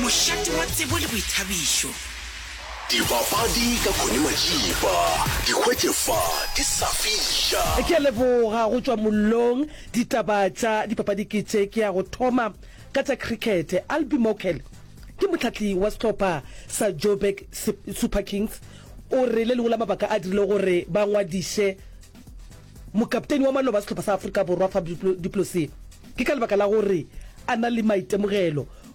Mošate wa tsebo le boithabišo. Dibapadi ka Connie Matšipa, di hwetše fa di sa fiša. Ke a leboga go tšwa mollong. Ditaba tša dipapadi ke tše. Ke ya go thoma ka tša cricket. Albie Mokele ke mohlahli wa sehlopha sa Joburg Super Kings o re le lengwe la mabaka a dirilego gore ba ngwadiše mokapteini wa maloba a sehlopha sa Afrika Borwa Faf du Plessis ke ka lebaka la gore a na le maitemogelo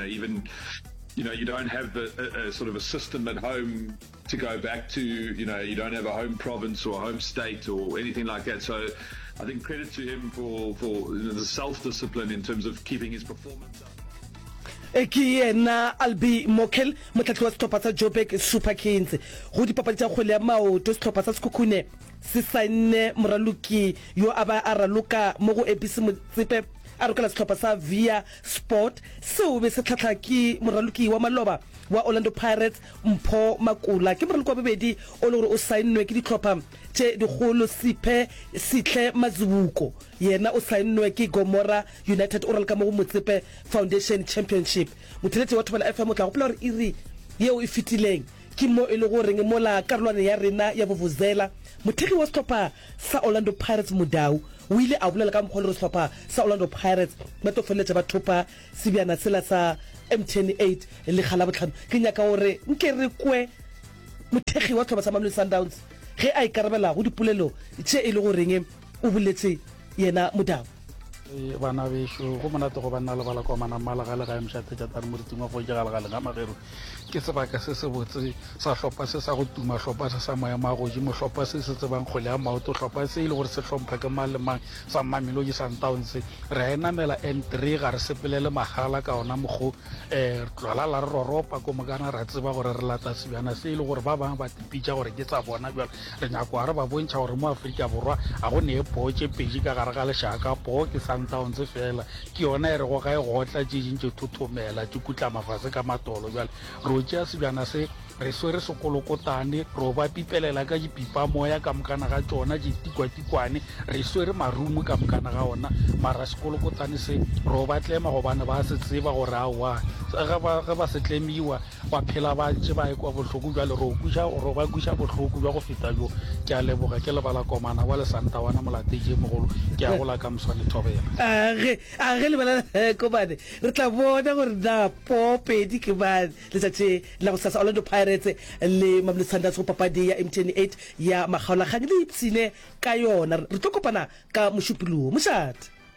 Even, you know, you don't have the, a, a sort of a system at home to go back to, you know, you don't have a home province or a home state or anything like that. So I think credit to him for, for the self discipline in terms of keeping his performance up. e ke yena albi mokel motlhatlhi wa setlhopha sa joburg super kings go dipapadi tsa kgwele ya maoto setlhopha sa sekhukhune se saenne moraloki yo a ba a raloka mo go abc motsepe a rokela setlhopha sa via Sport, seo be se hlahla ke moraloki wa maloba wa Orlando Pirates Mpho Makula. Ke moraloki wa bobedi o le gore o sainnwe ke dihlopha tše dikgolo. Siphe Sihle Mazibuko yena o sainnwe ke Gomora United, o raloka mo go Motsepe Foundation Championship. Motheletše wa Thobela FM o tla gopola gore iri yeo e fetileng ke mo e lego goreng mola karolwaneng ya rena ya Vuvuzela, mothekgi wa sehlopha sa Orlando Pirates Mudau o ile a bolela ka mokgwa o lego sehlopha sa Orlando Pirates ba tlo feleletša ba thopa sebjana sela sa MTN 8 le ga Labohlano. Ke nyaka gore nke re kwe mothekgi wa sehlopha sa Mamelodi Sundowns ge a ikarabela go dipolelo tše e lego reng o boletše yena Mudau. Eh, bana bešo go monate go banna lebala kwa manamala ga le ga emšate jatane moriting wa go jegala ga lenga magero ke sebaka se se botse sa hlopha se sa go tuma hlopha se sa maemo a godimo hlopha se se tsebang kgole ya maoto hlopha se e le gore se hlompha ke mang le mang sa mmameloji sundowns re a e namela n three ga re sepelele magala ka ona mokgo um eh, tlwala la re roropa ko mokana ra tseba gore re lata sebjana se e le gore ba bangwe ba tipitša gore ke tsa bona bjalo Re nyakwa re ba bontšha gore mo Afrika Borwa ga go nee poo tše pedi ka gare ga lešaka, poo ke Sundowns fela, ke yona e rego ga e gotla tše ding tše thothomela, tše kutlama fase ka matolo. Bjale re o tšea sebjana se, re swere sekolokotane, re o ba pipelela ka dipipamoya ka mokana ga tšona, ditikwatikwane, re swere marumo ka mokana ga ona, mara sekolokotane se re o ba tlema gobane ba se tseba gore aowa, ge ba se tlemiwa, Ba phela ba ntše ba ekwa bohloko bjale ro kwiša, ro ba kwiša bohloko bja go feta bjo. Ke a leboga, ke lebala Komana wa Lesantawana Molateje mogolo, ke a go la Kamswane Thobela. A ge, a ge lebelela he Komane, re tla bona gore na po pedi ke mang letšatši la go sasa. Orlando Pirates le Mamelodi Sundowns go papadi ya MTN 8 ya makgaolakgang le ipshine ka yona. Re tlo kopana ka Mošupulogo. Mošate.